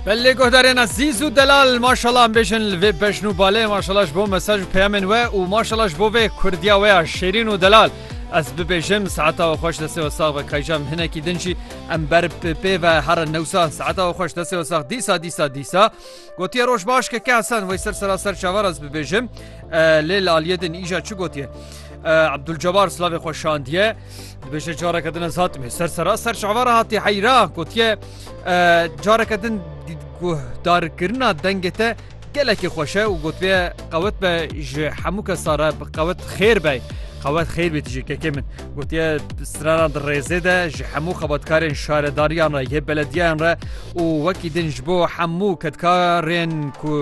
Belê guhdarên ezîz û delal maşala em bêjin li vê bejn û balê maşala ji bo mesaj û peyamên we û maşala ji bo vê kurdiya we ya şêrîn û delal. Ez bibêjim saeta we xweş destê we sax be kayca em hinekî din jî em ber bi pê ve herin newsa saeta we xweş destê we sax dîsa dîsa dîsa. Gotiye roj baş keke Hesen wey ser sera ser çavar ez bibêjim lê li aliyê din îja çi gotiye Abdulcebar slavê xwe şandiye dibêje careke din ez hatime ser sera ser çavara hatiye heyra gotiye careke din guhdarkirina dengê te gelekî xweşe û gotiye qewet be ji hemû kesare bi qewet xêr be xewet xêr bê tijî kekê min gotiye strana di rêzê de ji hemû xebatkarên şaredariyana yê belediyan re û wekî din ji bo hemû kedkarên ku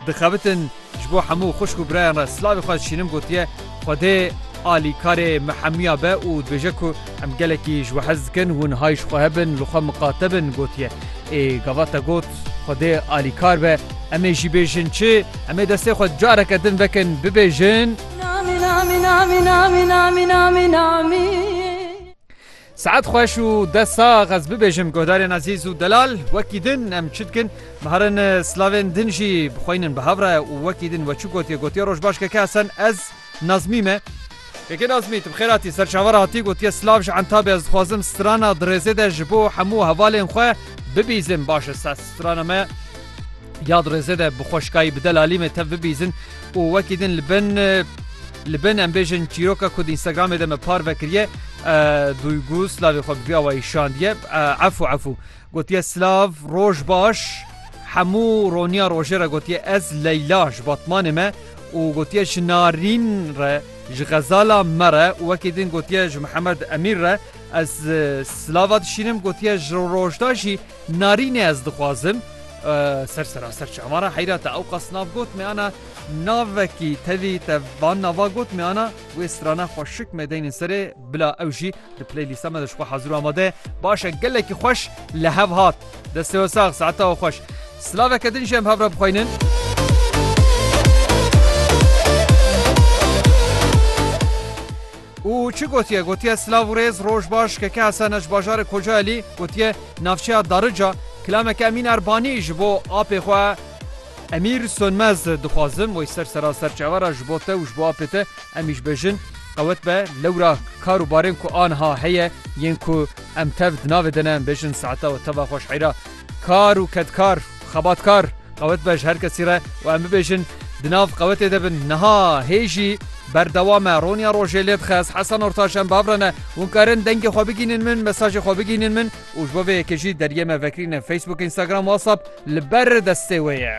dixebitin ji bo hemû xwişk û birayan re silavê xwe dişînim gotiye, Xwedê alîkarê me hemiya be û dibêje ku em gelekî ji we hez dikin, hûn hay ji xwe hebin, li xwe miqate bin gotiye. Ê gavata got, Xwedê alîkar be, em ê jî bêjin çi? Em ê destê xwe careke din vekin bibêjin. Saet xweş û dest sax ez bibêjim guhdarên ezîz û delal wekî din em çi dikin biherin slavên din jî bixweynin bi hev re û wekî din we çi gotiye gotiye roj baş keke esen ez nazmî me Keke nazmî tu bi xêr hatî ser çavar hatî gotiye slav ji entabê ez dixwazim strana dirêzê de ji bo hemû hevalên xwe bibîzim baş e ses strana me ya dirêzê de bi xweşkayî bi delalî me tev bibîzin û wekî din li bin Li bin em bêjin çîroka ku di Instagramê de me par vekiriye Duygu silavê xwe bi vî awayî şandiye Efû efû gotiye silav roj baş hemû roniya rojê re gotiye ez Leyla ji Batmanê me û gotiye ji Narîn re ji xezala me re û wekî din gotiye ji Mihemed Emîr re ez silava dişînim gotiye ji rojda jî Narînê ez dixwazim ser seraser çavan re heyra te ew qas nav got me ana Navekî tevî tev van nava got me ana wê strana xwe şik me deynên serê bila ew jî di play lîsta me de ji xwe hazir û amade ye. Baş e gelekî xweş li hev hat. Destê we sax saeta we xweş. Silaveke din jî em hev re bixweynin. Û çi gotiye gotiye silav û rêz roj baş keke hesena ji bajarê kocaelî gotiye navçeya darica kilameke emîn erbanî ji bo apê xwe Emîr Sönmez, Dixwazim wê ser sera serçava re ji bo te û ji bo apê te em îş bejin qewet be. Lewra kar û barên ku aniha heye yên ku em tev di navê de ne em bêjin saeta we teva xwe ji heyra kar û kedkar û xebatkar qewet be ji her kesî re û em bibêjin di nav qewetê de bin. Niha hê jî berdewam e. Roniya rojê lê dixe ez Hesen Ortaç em bi hev re ne. Hûn karin dengê xwe bigihînin min, mesajê xwe bigihînin min. Û ji bo vê yekê jî deriyê me vekirîne Facebook, Instagram, WhatsApp li ber destê wê ye.